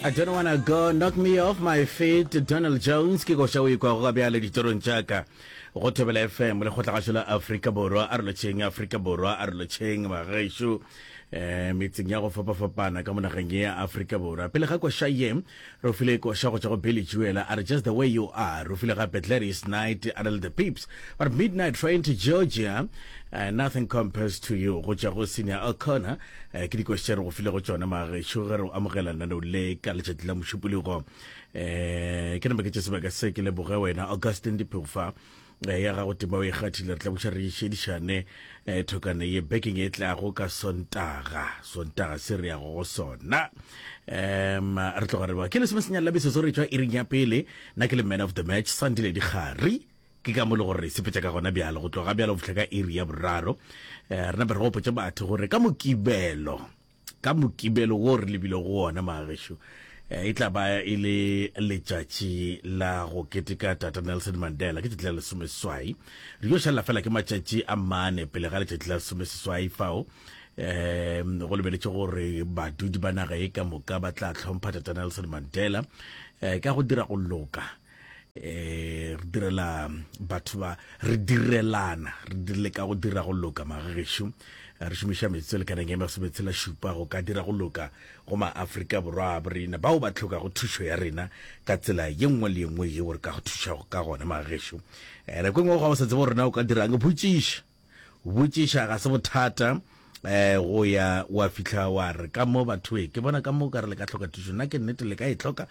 I don't wanna go knock me off my feet Donald Jones ke koša o ikwago ka bjale ditorong tša ka go thobela fm le kgotlagašo la afrika borwa a re lotšheng afrika borwa a re lotšheng bagešo um metseng ya go fapafapana ka monageng ye ya afrika borwa pele ga koša ye re file koša go tša go billy juela a re just the way you are re file gape gladys night a re le the peeps but midnight train to georgia uh, nothing compares to you go tša go senior o'connor um ke dikoši tše re go filego tšone magešo ge re o amogela naneo le ka letšatši la mošupologo um eh, ke nama ke tše sebaka se ke leboge wena augustin dipheufa eh, ya gago tema o e kgathile re tla boša re išedišane um thokane ye bekeng e tlago ka sontaga sontaga se re yago go sona um re tloga re ba ke lesome senyalelabeso se re tšwa iring ya pele nna ke le man of the match sandile dikgari Ke ka mo le gore re sepetša ka gona bjalo go tloga bjalo go fihla ka iri ya boraro. Eh, re nape re gopotše batho gore ka mokibelo ka mokibelo wo re lebile go ona magagesho eh, e tla ba e le letšatši la go keteka tata nelson mandela ke tšatši la lesomeswai re yo šalela fela ke matšatši a mane pele ga letšatši la lesomeseswai fao um go lebeletše gore badudi ba naga e ka moka ba tla tlhompha tata nelson mandela um ka go dira go loka eh re direla batho ba re direlana re dirile ka go dira go loka magagesho re šomiša metsotso lekaneng e masometse la šupa go ka dira go loka go maaforika borwa a borena bao ba tlhokago thušo ya rena ka tsela ye nngwe le ye nngwe yeo re ka go thušago ka gona magagesho eh, nako e nngwe ga o sa tsebo rena o ka dirang botšiša Botšiša ga se bothata go ya wa fihla wa re ka mo bathoe ke bona ka mo ka re le ka tlhoka thušo nna ke nnete le ka e tlhoka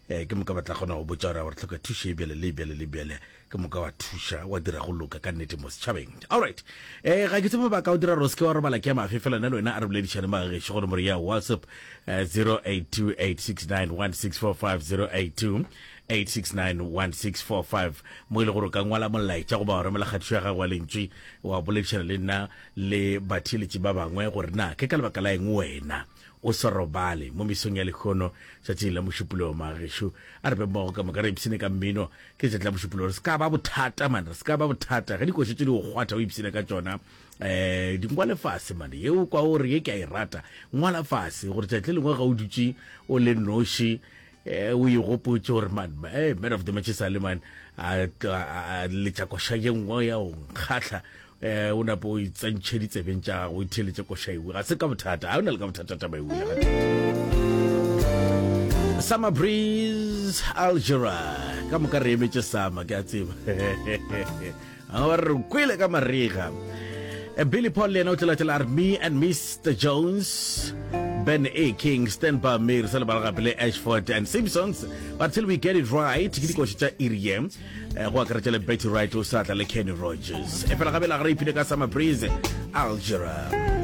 ke moka batla kgona go botša gore gore tlhoka thušo e bjale le e bjale le bjale ke moka wa thuša wa dira go loka ka nnete mo setšhabeng allright um ga ke tsebo ba ka o dira gore o seke wa robala ke ya mafe fela na le wena a re boledišane ba gagešo go nomoro ya whatsapp 0828691645 082 8691645 mo e le gore o ka ngwala molaetša goba wa romela kgatišo ya gago ya lentšwi wa boledišana le nna le batheeletši ba bangwe gore na ke ka lebaka la eng wena o sa robale mo mesong ya lekgono tšatšing la mošupologo magešo a re be mmogo ka moka re ipsene ka mmino ke letšatši la mošupologo re se ka ba bothata mane re se ka ba bothata ge dikošo tse di go kgwatha o ipsene ka tsona um dingwa lefase mane yeo kwa o re ye ke a e rata ngwala fase gore tšatši le lengwe ga o dutše o le noši Eh, o igopotše gore man eh, man of the match sa le man a tla a letša koša ye nngwe ya o nkgahla eh, o napo o itsentšhe ditsebeng tša gago o itheletše koša ewe ga se ka bothata ga o na le ka bothata taba ewe ya gata summer breeze algera ka moka re emetše sama ke a tseba a ba re kwele ka marega eh, billy paul le yena o tlalatela a re me and mr jones ben a king stand by me re sa lebala gape le ashford and simpsons but till we get it right ke dikoši tša irie eh, go akaretša le betty right o sa tla le kenny rogers e fela gabela ga re ipile ka summer breeze algera